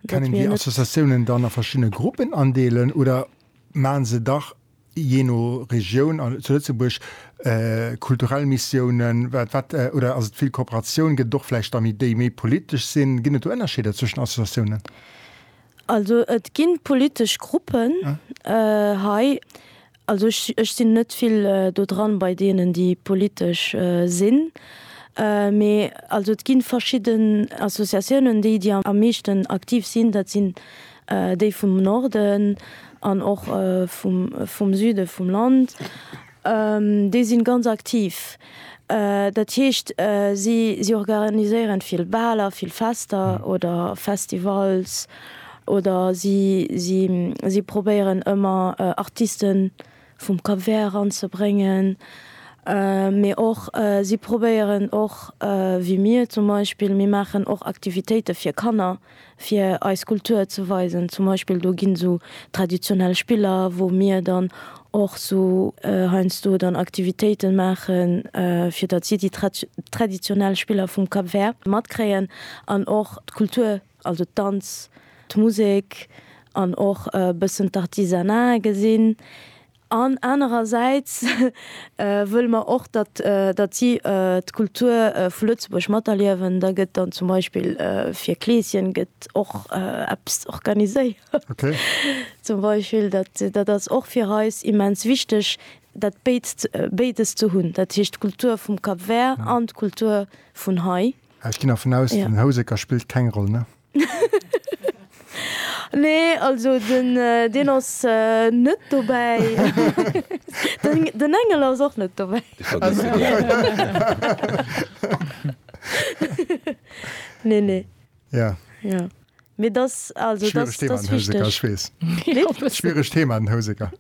Kann een déi Associatiounen dann a verschiddene Gruppen andeelen oder maachen se dach, jee no Regioun an zu Lëtzebuerg, kulturell Missiounen, wat, wat, oder ass et vill Kooperatioun? Gëtt et och vläicht da méi, déi méi politesch sinn? Ginn et do Ënnerscheeder zwëschen den Associatiounen? Also et gi politesch Gruppen hei Also ech sinn net vill do dran bei deenen déi politesch sinn, mee also et gi verschidden Associatiounen déi déi am meeschten aktiv sinn, dat sinn déi vum Norden an och vum Süde vum Land, déi sinn ganz aktiv. Dat heescht, si organiséieren vill Baler, vill Fester oder Festivals oder si si si probéieren ëmmer Artisten vum Cap Vert eranzebréngen. Mee och si probéieren och, wéi mir zum Beispill, mir maachen och Aktivitéite fir Kanner. fir eis Kultur ze weisen. Zum Beispill do ginn esou traditionell Spiller, wou mir dann och esou heiansdo dann Aktivitéiten maachen, fir datt si déi traditionell Spiller vum Cap Vert matkréien an och d'Kultur, also d'Danz, d'Musek an och e bëssen d'Artisanat gesinn. An anerersäits wëlle mer och, datt datt si d'Kultur vu Lëtzebuerg materliewen. Da gëtt dann zum Beispill fir Kleeschen gëtt och eppes organiséiert. Zum Beispill dat dat ass och fir eis immens wichteg, dat béid béides ze hunn, dat heescht d'Kultur vum Cap Vert an d'Kultur vun hei. Ech ginn dervun aus, den Houseker spillt keng Roll, ne? Nee also den deen ass net dobäi. Den Engel ass och net dobäi. Dee vergësst een direkt. Nee nee. Jo. Jo. Mee dass also dass dass wichteg. Schwieregt Thema den Houseker, ech weess. Wéi? E bëssen. Schwieregt Thema den Houseker.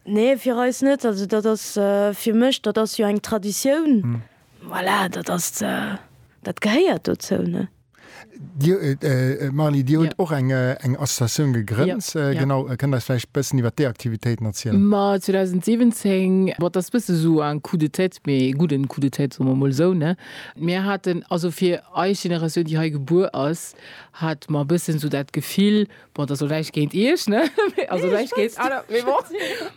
Nee fir eis net. Also dat ass fir mech, dat ass jo eng Traditioun. Voilà, dat ass, dat gehéiert dozou, ne? Marly, Dir hutt och eng Associatioun gegrënnt, genau. Kënnt eis vläicht e bëssen iwwer déi Aktivitéiten erzielen? Ma 2017, dat ass e bësse sou en Coup de tête, mee e gudden Coup de tête, soe mer emol esou, ne? Mir haten, also fir eis Generatioun, déi hei gebuer ass, hate mer e bëssen sou dat Gefill, Bon, das soll näicht géint Iech, ne? Also näicht géint aner, mee bon.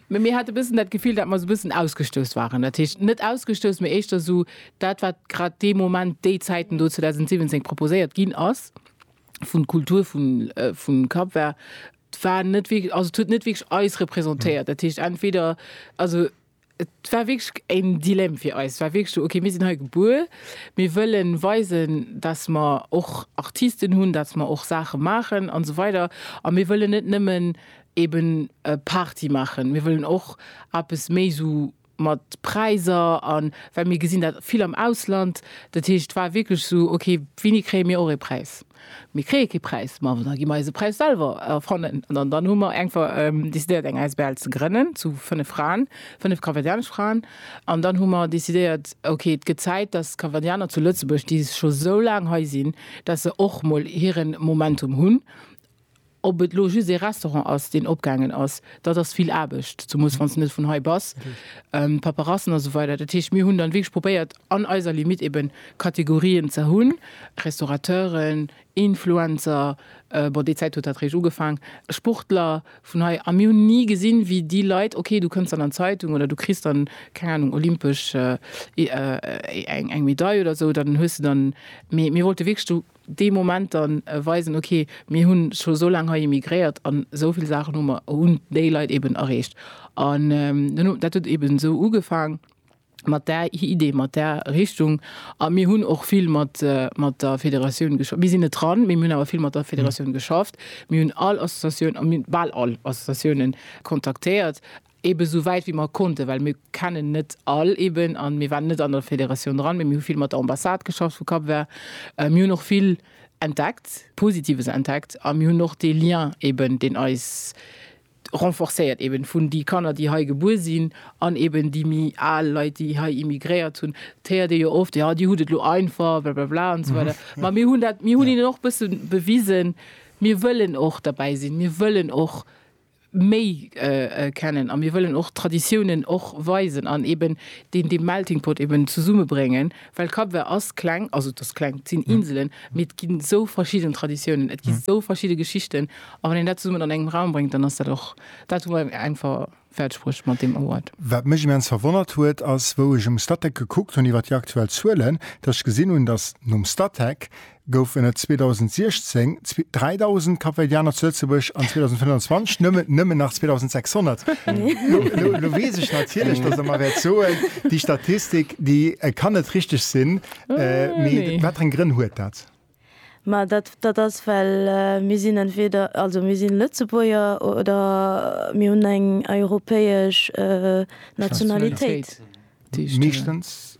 Mee mir hate bëssen dat Gefill, dat mer sou bëssen ausgestouss waren. Dat heescht, net ausgestouss, mee éischter sou dat, wat grad dee Moment, déi Zäiten do, 2017, proposéiert ginn ass vun d'Kultur vun, vun Cap-Vert, war net wierklech, also et huet net wierklech eis représentéiert. Dat heescht, entweder, also. Et war wierklech en Dilemme fir eis. Et war wierklech esou, okay, mir sinn hei gebuer, mir wëlle weisen, dass mer och Artisten hunn, dass mer och Saache maachen an esou weider a mir wëllen net nëmmen eeben Party maachen, mir wëllen och eppes méi esou mat Präiser an, well mir gesinn dat vill am Ausland. Dat heescht, et war wierklech esou, okay, wéini kréie mir och ee Präis? Mir kréie kee Präis. Ma da gi mer eise Präis selwer erfannen. An dann hu mer einfach decidéiert, eng Asbl ze grënnen, zu fënnef Fraen, fënnef kapverdianesch Fraen. An dann hu mer decidéiert, ok, et gëtt Zäit, dass d'Kapverdianer zu Lëtzebuerg, déi scho sou laang hei sinn, dass se och mol hiren Momentum hunn. Ob et elo just ee Restaurant ass, deen opgaangen ass, dat ass vill Aarbecht, zumools wann s de net vun hei bass, Paperassen a sou weider. Dat heescht, mir hunn dann wierklech probéiert, an eiser Limite eeben Kategorien ze hunn, Restaurateuren, Influencer, bon, déi Zäit huet dat réischt ugefaang, Sportler vun hei, a mir hunn ni gesinn, wéi déi Leit, ok, du kënns dann an d'Zeitung oder du kriss dann, keng Anung, olympesch, eng Medail oder sou, dann hues de dann, mee mir wollte wierklech do dee Moment dann weisen, ok, mir hu scho esou laang hei immigréiert an esou vill Saachen hu mer, hunn déi Leit eben erreecht. An dat huet eben esou ugefaang, mat där Idee, mat där Richtung. A mir hunn och vill mat der Federatioun geschafft. Mir sinn net dran, mee mir hunn awer vill mat der Federatioun geschafft. Mir hunn all Associatioun, bal all Associatiounen kontaktéiert, Eben esou wäit wéi mer konnten, well mir kennen net all eben an mir waren net an der Federatioun dran, mee mir hu vill mat der Ambassade geschafft vu Cap-Vert. Mir hunn och vill entdeckt, Positives entdeckt a mir hunn och dee Lien eben, deen eis renforcéiert eben vun déi Kanner, déi hei gebuer sinn an eben déi méi al Leit, déi hei immigréiert hunn. Et héiert ee jo oft, jo, déi hunn et elo einfach, blablabla an esou weider. Ma mir hunn dat, mir hunn hinnen och e bësse bewisen, mir wëllen och derbäi sinn, mir wëllen och méi kennen a mir wëllen och d'Traditiounen och weisen an eben deen dee Melting Pot eben zesumme bréngen, well Cap-Vert ass kleng, also et ass kleng, et sinn Inselen, mee et ginn esou verschidden Traditiounen, et gi sou verschidde Geschichten a wann een dat zesummen an engem Raum bréngt, dann ass dat och, dat hu mer eng ver fäert Spruch mat deem Award. Wat mech immens verwonnert huet ass, wou ech um Statec gekuckt hunn iwwert déi aktuell Zuelen, datt ech gesinn hunn, datt nom Statec goufen et 2016 3.000 Kapverdianer zu Lëtzebuerg an 2025 nëmmen nëmmen nach 2.600. Lo, lo, lo weess ech natierlech, dass Der mer wäert soen, déi Statistik, déi kann net richteg sinn. Äh, Mee nee. wat fir eng Grënn huet dat? Ma dat, dat ass, well mir sinn entweder, also mir si Lëtzebuerger oder mir hunn eng europäesch Nationalitéit. Nationalitéit, déi ech da. Meeschtens.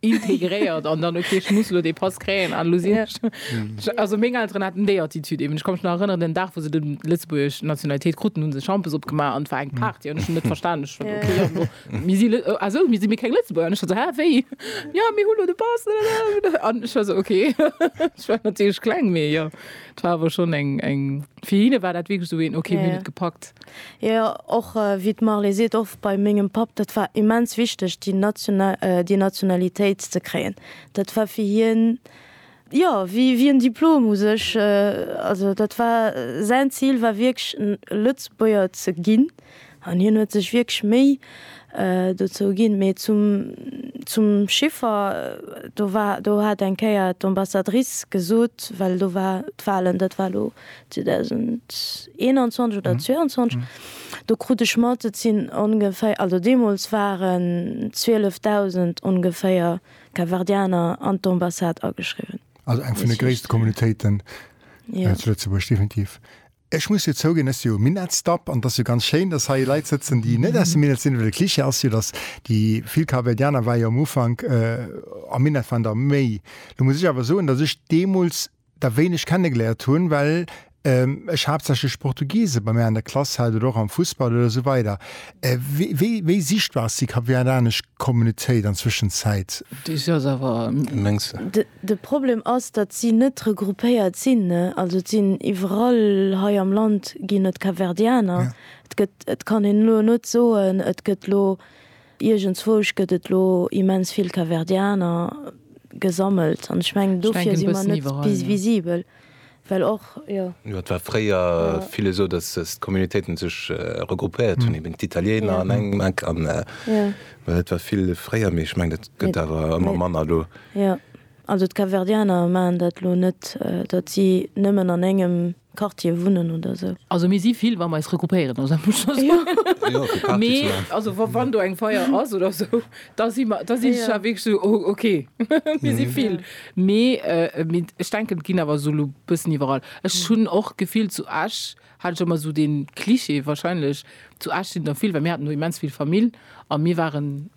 integréiert an dann okay ech muss lo dee Pass kréien an lo sinn ech do. Also meng Elteren haten déi Attitude eben. Ech ka mech nach erënneren den Dag wou se de lëtzebuergesch Nationalitéit kruten hunn se Schampes opgemaach an et war eng Party an ech hunn net verstan ech hunn okay jo mir si lë ah sou mir si mir keng Lëtzebuerger an ech war sou hä wéi jo mir hu lo de Pass an ech war sou okay ech war natierlech kleng mee jo et war awer schonn eng eng fir hinne war dat wierklech sou een okay mir hunn et gepackt. Jo, jo, och wéi d'Marley seet, och bei mengem Papp, dat war immens wichteg, déi national, déi Nationalitéit ze kréien. Dat war fir hien, jo, wéi, wéi en Diplom u sech. Also dat war, säin Zil war wierklech Lëtzebuerger ze ginn an hien huet sech wierklech Méi dozou ginn. Mee zum, zum Chiffer, do war, do hat eng Kéier d'Ambassadrice gesot, well do war d'Walen, dat war elo 2021 oder 2022, do krut ech mat, et sinn ongeféier, also deemools waren 12.000 ongeféier Capverdianer an d'Ambassade ageschriwwen. Also eng vun de gréisste Communautéiten zu Lëtzebuerg, definitiv. Ech muss jo zouginn, et ass jo e Minettsdapp an et ass jo ganz schéin, datt hei Leit sëtzen, déi net aus dem Minett sinn, well de Cliché ass jo, datt déi vill Capverdianer ware jo am Ufank am Minett waren der méi. Lo muss ech awer soen, datt ech deemools, der wéin ech kennegeléiert hun, well ech haaptsächlech Portugiesen bei mär an der Klass hat oder och am Fussball oder esou weider, wéi sichtbar ass déi kap-verdianesch Kommunitéit an Zwëschenzäit? De Problem ass, datt si net regroupéiert sinn, also et sinn iwwerall hei am Land ginn et Kapverdianer, et kann een elo net soen, et gëtt elo Iergendzwousch gëtt et lo immens vill Capverdianer gesammelt an ech mengen dofir si mer net bis visibel, well och, jo. Jo, et war fréier vill esou, datt d'Communautéiten sech regroupéiert hunn, eben d'Italieener an engem Eck an et war vill fréier, mee ech mengen dat gëtt awer ëmmer manner elo. Also d'Capverdianer maachen dat elo net, datt si nëmmen an engem Quartier wunnen oder esou. Also mir si vill, wa mer eis regroupéieren, also dat muss ech scho soen. Mee also wann do eng Feier ass oder esou, da si mer, da sinn ech da wierklech esou, oh ok, mir si vill. Mee ech denken, et ginn awer esou elo e bëssen iwwerall. Ech hunn och d'Gefill zu Esch, hat ech ëmmer sou dee Cliché, wahrscheinlech zu Esch sinn der vill, well mir haten do immens vill Famill a mir waren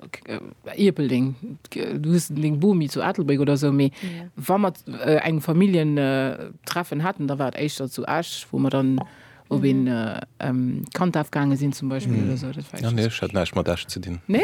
Ierpeldeng, du hues deng Bomi zu Ettelbréck oder sou, mee wa mer eng Familljentreffen haten, da war et éischter zu Esch, wou mer dann op een Kantaf gaange sinn zum Beispill oder sou. Dat war éischter. Ah nee, ech hat näischt mat Esch ze dinn. Nee?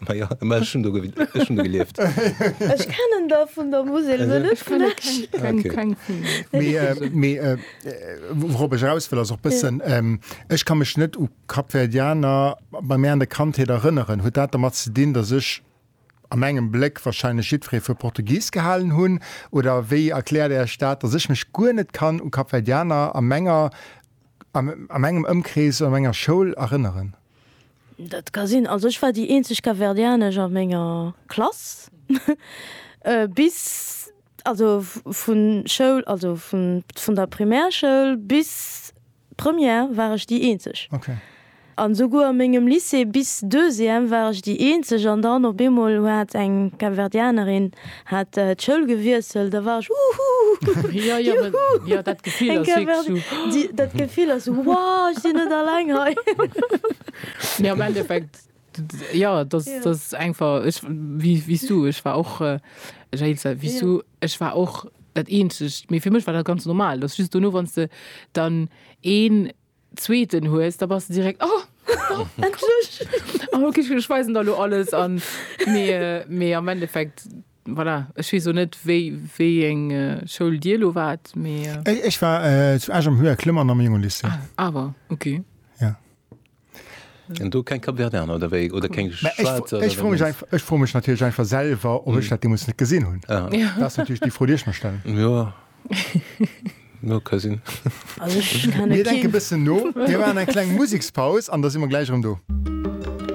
Ma jo, ma ech hunn do ge ech hunn do gelieft. Ech kennen der vun der Musel, Also, ech net vun kenne keng, Esch. keng, Okay. keng vun den Mee, äh, Musel. mee äh, wourop ech eraus wëll, ass och bëssen, ähm, ech ka mech net u Kapverdianer bei mär an der Kandheet erënneren. Huet dat dermat ze dinn, datt ech a mengem Bléck wahrscheinlech jiddweree fir Portugis gehalen hunn? Oder wéi erkläert Är Iech dat, datt ech mech guer net kann u Kapverdianer a menger, a mengem Ëmkrees oder menger Schoul erënneren? Dat ka sinn. Also ech war déi eenzeg Capverdianesch a menger Klass bis, also vun Schoul, also vun vun der Primärschoul bis Première war ech déi eenzeg. Okay. An esouguer a mengem Lycée bis Deuxième war ech déi eenzeg an dann op eemol hat eng Capverdianerin Hat d'Schoul gewiesselt, da war ech Uhuuh! Ja, ja, Juhu! Ja, dat Gefill ass wierklech sou. Dat Gefill ass sou, Wow, ech sinn net alleng hei! Mee am Endeffekt, jo, dass dass einfach ech, wéi wéi s du, ech war och, Jael, sou wéi s du, ech war och dat eenzegt, mee fir mech war dat ganz normal, dass just dono, wann s de dann een, zweeten hues, da bass de direkt oh, endlech! oh, okay, ech weisen der lo alles an. Mee, mee am Endeffekt, voilà, ech weess och net, wéi, wéi eng Schoul Dir lo waart, mee. Ech war zu Esch am Höher Klömmern am Jungelycée. Ah, awer, okay. Ja. An do keng Kapverdianer, oder wéi? Oder keng Schwäizer? Ech froe mech einfach, ech froe mech natierlech einfach selwer, ob ech dat deemools net gesinn hunn. Dat ass natierlech déi Fro, déi ech mer stellen. Jo. No ka sinn. Mir denke bëssen no, mir maachen eng kleng Musekspaus an da si mer gläich erëm do.